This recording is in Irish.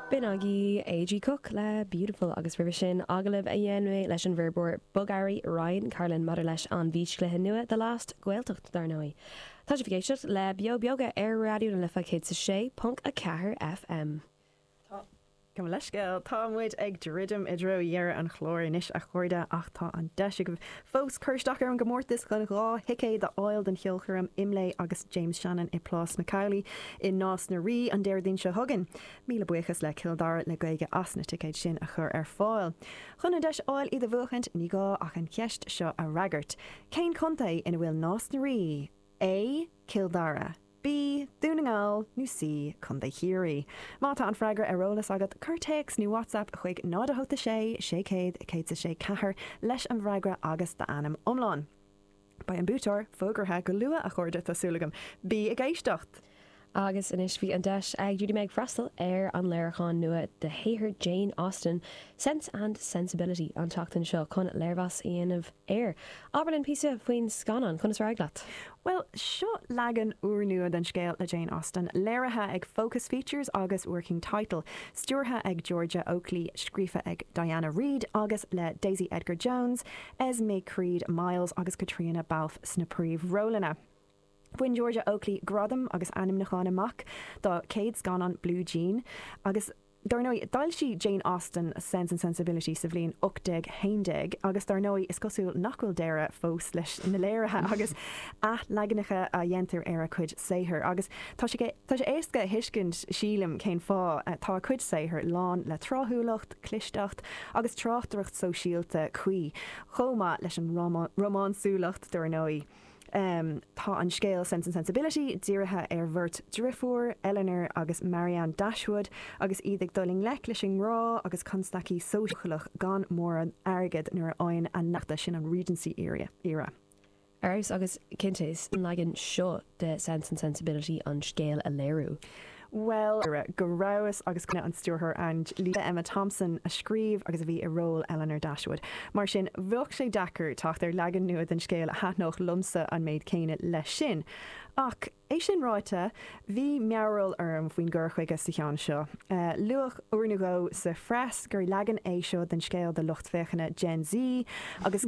B'in agaibh A.G. Cook le Beautiful agus roimhe sin, agallamh a dhein mé leis an bhfoirbeoir bogearraí Ryan Carlin maidir leis an bhfíschluiche nua The Last Gaeltacht, dar ndóigh. Tá sibh ag éisteacht le Beo Beoga ar Raidió na Life 106.4 FM. Tá. Gabh mo leithscéal, tá muid ag druidim i dtreo dheireadh an chláir anois a chairde, ach tá an deis agaibh fós cur isteach ar an gcomórtas chun dhá thicéad a fháil don cheolchoirm Imlé agus James Shannon i Plás McAuley i Nás na Rí an Déardaoin seo chugainn. Míle buíochas le Cill Dara le Gaeilge as na ticéid sin a chur ar fáil. Chun an deis a fháil iad a bhuachaint, ní gá ach an cheist seo a fhreagairt, Cén contae ina bhfuil Nás na Rí? A. Cill Dara. B, Dún na nGall, nó C, Contae Chiarraí? Má tá an freagra ar eolas agat, cuir téacs nó WhatsApp chuig 0 8 6 600 106 4 leis an bhfreagra agus d'ainm iomlán. Beidh an buaiteoir fógartha go luath, a chairde, tá súil agam. Bí ag éisteacht! Agus anois bhí an deis ag Judy Meg freastal ar an léiriúchán nua de shaothar Jane Austen, Sense and Sensibility, an tseachtain seo chun léirmheas a dhéanamh air Abair linn píosa faoin scannán, conas ar éirigh leat? Bhuel, seo leagan úrnua den scéal le Jane Austen, léirithe ag Focus Features agus Working Title, stiúrtha ag Georgia Oakley, scríofa ag Diana Reid agus le Daisy Edgar-Jones, Esmé Creed-Miles, agus Caitríona Balfe sna príomhrólanna. Bhain Georgia Oakley gradaim agus ainmniúcháin amach dá céad scannán Blue Jean agus. Dar ndóigh, d'fhoilsigh Jane Austen Sense and Sensibility sa bhliain 1811 agus dar ndóigh, is cosúil nach bhfuil deireadh fós leis na léirithe agus athleaganacha a dhéantar ar a cuid saothar. Agus tá sé éasca a thuiscint, sílim, cén fáth. Tá a cuid saothar lán le tráthúlacht, clisteacht agus tráchtaireacht shóisialta cuí, chomh maith leis an rómánsúlacht, dar ndóigh. Tá an scéal Sense and Sensibility dírithe ar bheirt driofúr, Elinor agus Marianne Dashwood, agus iad ag dul i ngleic leis an ngrá agus constaicí sóisialach gan mórán airgead nuair a fhaigheann a n-eachta sin an Regency era. Agus cinnte, sa leagan seo de Sense and Sensibility an scéal a léiriú. Bhuel, go rabhas agus cuimhne an stiúrthóir Ang Lee le Emma Thompson a scríobh agus a bhí i ról Elinor Dashwood. Mar sin, bheadh sé deacair teacht ar leagan nua den scéal a thaitneodh liomsa an méid céanna leis sin. Ach, é sin ráite, bhí mearbhall orm faoin gcur chuige sa cheann seo. Luadh uair nó dhó sa phreas gur leagan é seo den scéal do lucht féachana Gen Z agus.